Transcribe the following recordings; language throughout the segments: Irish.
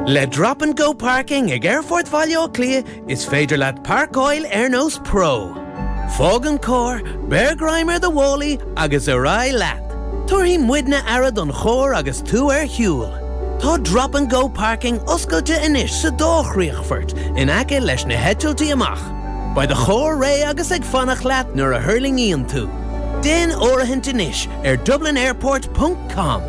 Le Drop and Go Parking ag Aerfort Bhaile Átha Cliath is féidir leat páirceáil ar nós pro. Fág an cór, beir greim ar do mhálaí agus ar aghaidh leat! Tabharfaidh muidne aire don chór agus tú ar shiúl. Tá Drop and Go Parking oscailte anois sa dá chríochfort in aice leis na heitiltí amach. Beidh do chór réidh agus ag fanacht leat nuair a thuirlingíonn tú. Déan áirithint anois ar dublinairport.. com.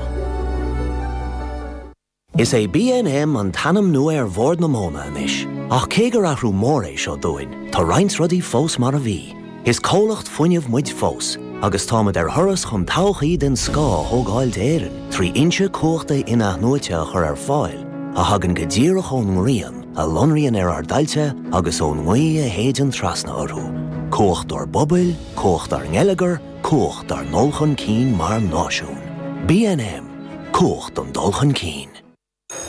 Is é BNM an t-ainm nua ar Bhord na Móna anois, ach cé gur athrú mór é seo dúinn, tá roinnt rudaí fós mar a bhí. Is comhlacht fuinnimh muid fós, agus táimid ar thuras chun todhchaí den scoth a thógáil d'Éirinn trí fhoinse cumhachta in-athnuaite a chur ar fáil a thagann go díreach ón ngrian a lonraíonn ar ár dtailte agus ón ngaoth a shéideann trasna orthu. Cumhacht ár bpobail, cumhacht ár ngeilleagar, Cumhacht ár ndul chun cinn mar náisiún. BNM, Cumhacht an dul chun cinn.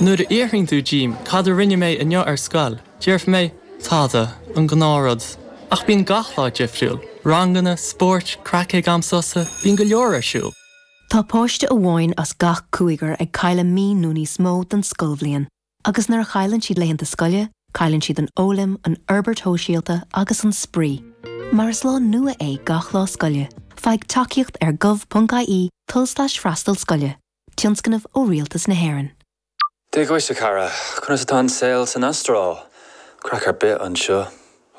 Nuair a fhiafraíonn tú díom cad a rinne mé inniu ar scoil, déarfaidh mé, tada, an gnáthrud. Ach bíonn gach lá difriúil, ranganna, spóirt, craic ag am sosa, bíonn go leor ar siúl. Tá páiste amháin as gach cúigear ag cailleadh mí nó níos mó den scoilbhliain. Agus nuair a chailleann siad laethanta scoile, cailleann siad an fhoghlaim, an fhorbairt shóisialta agus an spraoi. Mar is lá nua é gach lá scoile, faigh tacaíocht ar gov.ie tulslais freastal scoile, tionscnamh ó Rialtas na hÉireann. Dia dhuit a chara, conas atá an saol san Astráil? Craic ar bith anseo.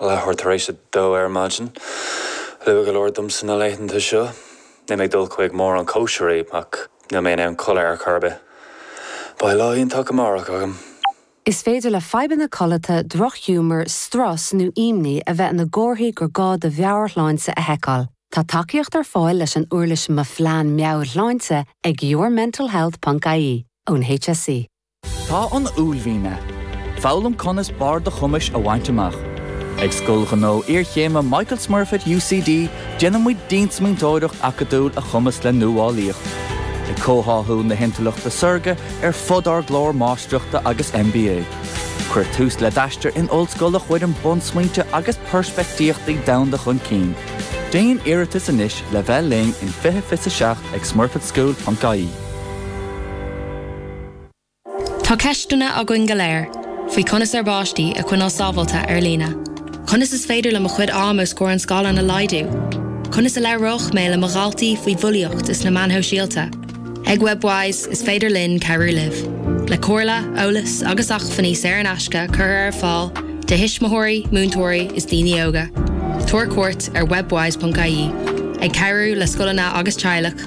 Leathuair tar éis a dó ar maidin. Luath go leor domsa na laethanta seo. Níl mé ag dul chuig mórán cóisirí, ach níl mé in ann codladh ar chor ar bith. Beidh lá iontach amárach agam. Is féidir le fadhbanna codlata, drochghiúmar, strus nó imní a bheith ina gcomharthaí gur gá do mheabhairshláinte a sheiceáil. Tá tacaíocht ar fáil leis an uirlis Mo Phlean Meabhairshláinte ag yourmentalhealth.ie ón HSE. Tá an uaillmhian ann. Foghlaim conas barr do chumais a bhaint amach. Ag Scoil Ghnó Iarchéime Michael Smurfit UCD déanaimid diansmaointeoireacht acadúil a chumasc le nuálaíocht, ag comhtháthú na hintleachta saorga ar fud ár gclár Máistreachta agus MBA. Cuir tús le d'aistear in ollscoil a chuireann bunsmaointe agus peirspictíochtaí domhanda chun cinn. Déan iarratas anois le bheith linn in 2027 ag smurfitschool.ie. Tá ceisteanna againn go léir faoi conas ár bpáistí a choinneáil sábháilte ar líne. Conas is féidir liom mo chuid ama os comhair an scáileáin a laghdú? Conas a labhróidh mé le mo dhaltaí faoi bhulaíocht is na meáin shóisialta? Ag Webwise, is féidir linn cabhrú libh, le comhairle, eolas agus acmhainní saor in aisce curtha ar fáil do thuismitheoirí, múinteoirí is daoine óga. Tabhair cuairt ar webwise.ie, ag cabhrú le scoileanna agus teaghlach,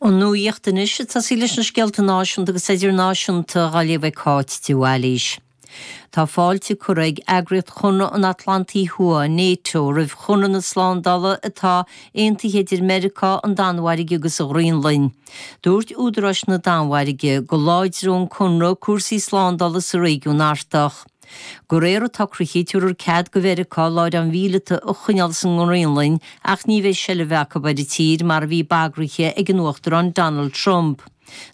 An nuacht anois ag tosaí leis na scéalta náisiúnta agus idirnáisiúnta, á léamh ag Cáit de Bhailís. Tá fáilte curtha ag Eagraíocht Chonradh an Atlantaigh Thuaidh, Nato, roimh Chonradh na Slándála atá aontaithe idir Meiriceá, an Danmhairg agus an Ghraonlainn. Dúirt údaráis na Danmhairge go láidreodh an conradh cúrsaí slándála sa réigiún Artach. Go réir an tsocraithe, tabharar cead go Mheiriceá láithreáin mhíleata a choinneáil sa nGraonlainn ach ní bheidh seilbh acu ar an tír mar a bhí bagraithe ag an Uachtarán Donald Trump.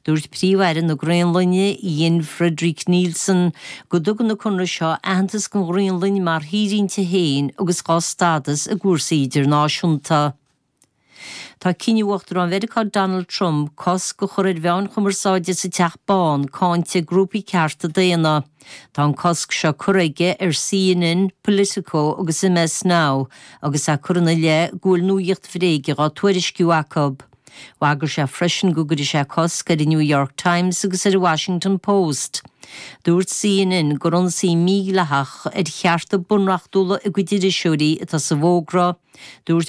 Dúirt Príomh-Aire na Graonlainne, Jens-Frederik Nielsen, go dtugann an conradh seo aitheantas don Ghraonlainn mar thír inti féin agus dá stádas i gcúrsaí idirnáisiúnta. Tá cinneadh Uachtarán Mheiriceá Donald Trump cosc a chur ar mheáin chumarsáide sa Teach Bán cáinte ag grúpaí cearta daonna. Tá an cosc seo curtha aige ar CNN, Politico agus MS Now agus é curtha ina leith go bhfuil nuacht bhréige á tuairisciú acu. Bhagair sé freisin go gcuirfidh sé cosc ar an New York Times agus ar an Washington Post. Dúirt CNN gur ionsaí mídhleathach ar chearta bunreachtúla a gcuid iriseoirí atá sa bhfógra. Dúirt.